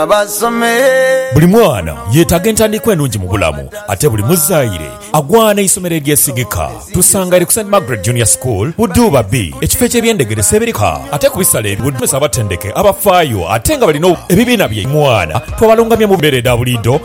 basome. Buli mwana yetaaga entandikwa enungi mu bulamu ate buli muzaire agwana eisomero eryesigika. Tusangaire ku Saint Margaret Junior School Buduuba B, ekifo eky'ebyendegedesa ebirika ate ku bisale ebi webasomesa abatendeke abafaayo ate nga balina ebibiina byaimwe. Abaana twabalungamya mu mbeera edha buliidho.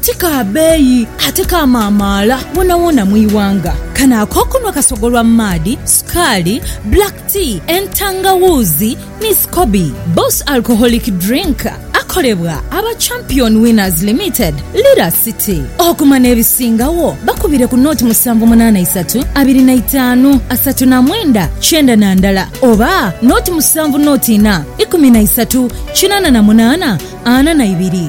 Ti ka beeyi ate ka maamaala wonawona mu ighanga. Kano ak'okunhwa kasogolwa mu maadhi, sukaali, black tea, entangawuuzi ni scoby. Boss Alcoholic Drink akolebwa aba Champion Winners Limited, Lira City. Okuma n'ebisingagho bakubire ku noti musanvu munaana isatu abiri na itaanu asatu na mwenda kyenda na ndala oba noti musanvu noti inha ikumi na isatu kinaana na munaana ana na ibiri.